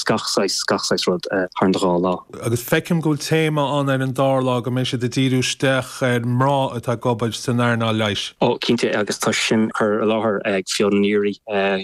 gach saghas, gach saghas rud thar an dhá lá. Agus feicim go bhfuil téama ann ar an dara lá go mbeidh siad ag díriú isteach ar mná atá ag obair san earnáil leighis. Ó, cinnte agus tá sin á chur i láthair ag Fiona Neary,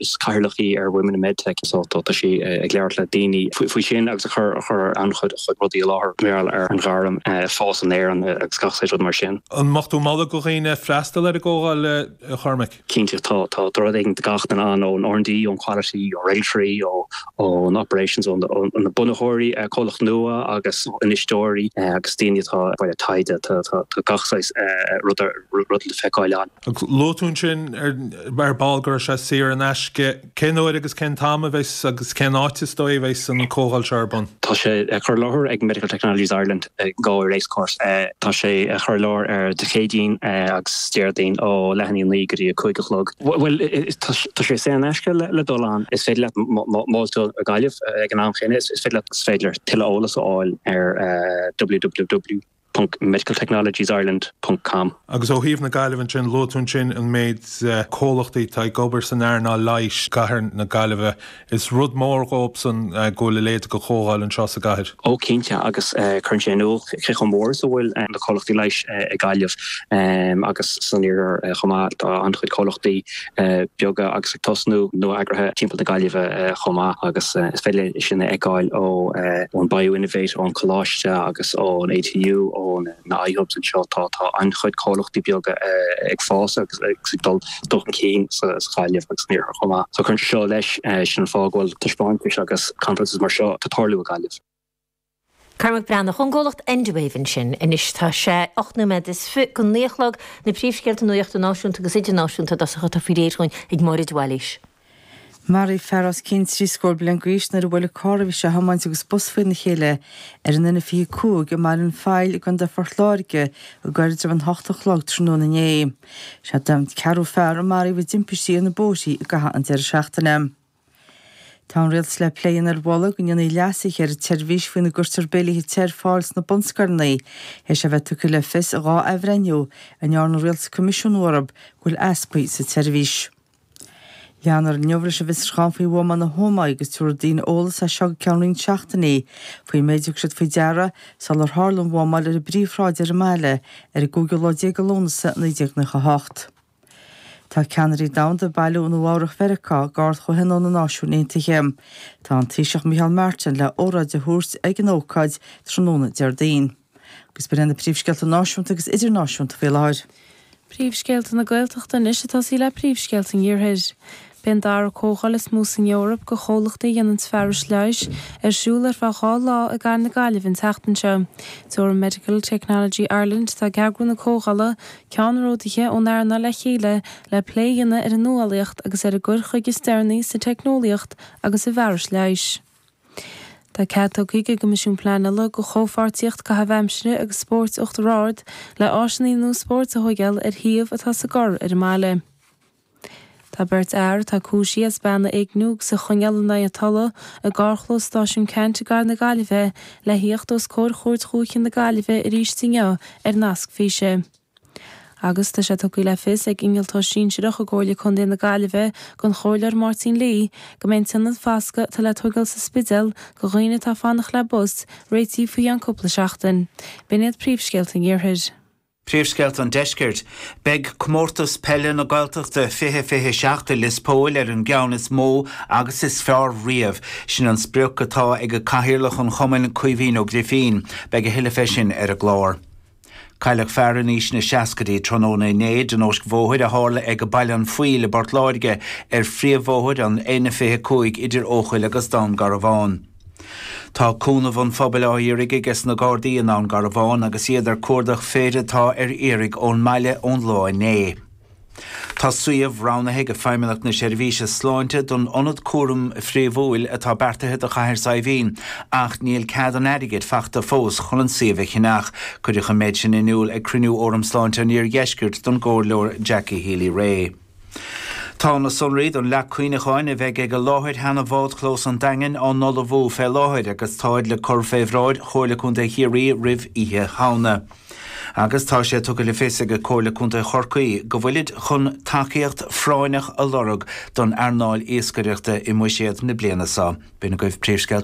is cathaoirleach í ar Women in Medtech, so tá sí ag labhairt le daoine faoi sin agus ag cur an-chuid rudaí i láthair mar gheall ar an ghairm, fós in Éirinn agus gach saghas rud mar sin. An mbeadh tú ag moladh do dhaoine freastal ar an gcomhdháil, Chormaic? Cinnte tá. Tá rud éigin do gach duine ann, ón R&D, ón Quality, ó Regulatory, ón Operations, ó na bunaitheoirí, comhlachtaí nua agus infheisteoirí agus daoine atá ag bailiú taighde. Tá gach saghas ruda le feiceáil ann. Luaigh tú ansin ar ball go raibh sé saor in aisce. Cén uair agus cén t-am a bheidh agus cén áit is dóigh a bheidh an chomhdháil seo ar bun? Tá sé á chur i láthair ag Medical Technologies Ireland i nGalway Racecourse. Tá sé á chur i láthair ar Dé Céadaoin agus Déardaoin ó leath i ndiaidh a naoi go dtí a cúig a chlog. Bhuel, tá sé saor in aisce le dul ann. Is féidir leat bualadh i nGaillimh ag an am céanna. Is féidir leat. Is féidir leat tuilleadh eolas a fháil ar www. ponc medicaltechnologiesireland ponc com. Agus ó thaobh na Gaillimhe ansin, luaigh tú ansin an méid comhlachtaí atá ag obair san earnáil leighis i gcathair na Gaillimhe. Is rud mór dhóibhsan go bhfuil a leithéid de chomhdháil anseo sa gcathair. Ó cinnte agus cuireann sé in iúl cé chomh mór is a bhfuil na comhlachtaí leighis i Gaillimh agus san iarthar chomh maith. Tá an-chuid comhlachtaí beaga agus ag tosnú, nua-eagraithe timpeall na Gaillimhe chomh maith agus is féidir linn sin a fheiceáil ón BioInnovate, ón Coláiste agus ón ATU, ó na iHubs anseo. Tá an-chuid comhlachtaí beaga ag fás agus ag dul chun cinn sa Ghaillimh agus san Iarthar chomh maith. So cuireann sé seo leis, sin an fáth go bhfuil taispeántais agus conferences mar seo ag tarlú i Gaillimh. Cormac Breathnach ón gcomhlacht Endwave ansin. Anois tá sé ocht nóiméad théis a naoi a chlog, na príomhscéalta nuachta náisiúnta agus idirnáisiúnta i dtosach atá faoi réir chugainn ag Máire de Bhailís. Maraíodh fear os cionn trí scór bliain d'aois nuair a bhuail carr a bhí sé a thiomáint agus bus faoina chéile ar an N25 i mBaile an Phaill i gContae Phort Láirge i gcoirdrim an hocht a chlog tráthnóna inné. Is é an ceathrú fear a maraíodh i dtimpistí ar na bóithrí i gcaitheamh an deireadh seachtaine. Tá an Rialtas le plé a dhéanamh ar mholadh go ndéanfaí leasaithe ar an tseirbhís faoina gcuirtear béilíthe te ar fáil sna bunscoileanna théis é a bheith tugtha le fios i dhá athbhreithniú a ndearna an Rialtas coimisiúnú orthu go bhfuil easpaí sa tseirbhís. Leanfar inniu leis an bhfiosruchán faoi bhuama na hÓmaí agus tabharfaidh daoine eolas as seo go ceann roinnt seachtainí faoin méid a thug siad faoi deara sular tharla an bhuamáil ar an bpríomhshráid ar an mbaile ar an gcúigiú lá déag de Lúnasa 1998. Tá ceannairí domhanda ag bailiú i Nua-Eabhrac Mheiriceá ag Ard-Chomhthionól na Náisiún Aontaithe. Tá an Taoiseach Micheál Martin le hóráid a thabhairt ag an ócáid tráthnóna Déardaoin. Agus ba iad na príomhscéalta náisiúnta agus idirnáisiúnta faoi láthair. Príomhscéalta na Gaeltachta anois ag tosaí le príomhscéalta an iarthair. Beidh an dara comhdháil is mó san Eoraip de chomhlachtaí a dhéananns fearais leighis ar siúl ar feadh dhá lá i gcathair na Gaillimhe an tseachtain seo. Tabharfaidh Medical Technology Ireland atá ag eagrú na comhdhála, ceannródaithe ón earnáil le chéile le plé a dhéanamh ar an nuálaíocht agus ar an gcur chuige is deireanaí sa teicneolaíocht agus i bhfearais leighis. Tá cead tugtha ag an gCoimisiún Pleanála do Chomhpháirtíocht Caithimh Aimsire agus Spóirt Uachtar Ard le áiseanna nua spóirt a thóigeáil ar shuíomh atá sa gcorr ar an mbaile. Tá beirt fhear atá cúisí as bean a éigniú agus a choinneáil in aghaidh a tola i gcarrchlós Stáisiún Ceannt i gcathair na Gaillimhe le thíocht os comhair Chúirt Dhúiche na Gaillimhe arís inniu ar nasc físe. Agus tá sé tugtha le fios ag innealtóir sinsearach i gComhairle Contae na Gaillimhe don Chomhairleoir Máirtín Lee go mbeidh an t-ionad fascaidh atá le tógáil sa Spidéal do dhaoine atá ag fanacht le bus réitithe faoi cheann cúpla seachtain. B'in iad príomhscéalta an iarthair. Príomhscéalta an Deiscirt, Beidh Comórtas Peile na Gaeltachta 2027 i Lios Póil ar an gceann is mó agus is fearr riamh. Sin an sprioc atá ag Cathaoirleach an chumainn, Caoimhín Ó Grifín. Beidh a thuilleadh fé sin ar an gclár. Cailleadh fear in aois na seascaidí tráthnóna inné i dtionóisc bhóthair a tharla ag Baile an Phoill i bPort Láirge ar phríomhbhóthair an N25 idir Eochaill agus Dún Garbhán. Tá cúnamh an phobail á iarraidh ages na Gardaí i nDún Garbhán agus iad ag cuardach fir atá ar iarraidh ón mbaile ón lá inné. Tá suíomh roghnaithe ag Feidhmeannacht na Seirbhíse Sláinte don ionad cúraim phríomhúil atá beartaithe do Chathair Saidhbhín ach níl cead an airgid fachta fós chun an suíomh a cheannach. Cuireadh an méid sin in iúl ag cruinniú Fhóram Sláinte an Iardheiscirt don gComhairleoir Jackie Healy-Rae. Tá na sonraí don leac cuimhneacháin a bheidh ag láthair sheana-bhádchlós an Daingin á n-ullmhú fé láthair agus táid le cur fé bhráid Chomhairle Contae Chiarraí roimh Oíche Shamhna. Agus tá sé tugtha le fios ag Comhairle Contae Chorcaí go bhfuilid chun tacaíocht phráinneach a lorg don earnáil iascaireachta i mbuiséad na bliana so.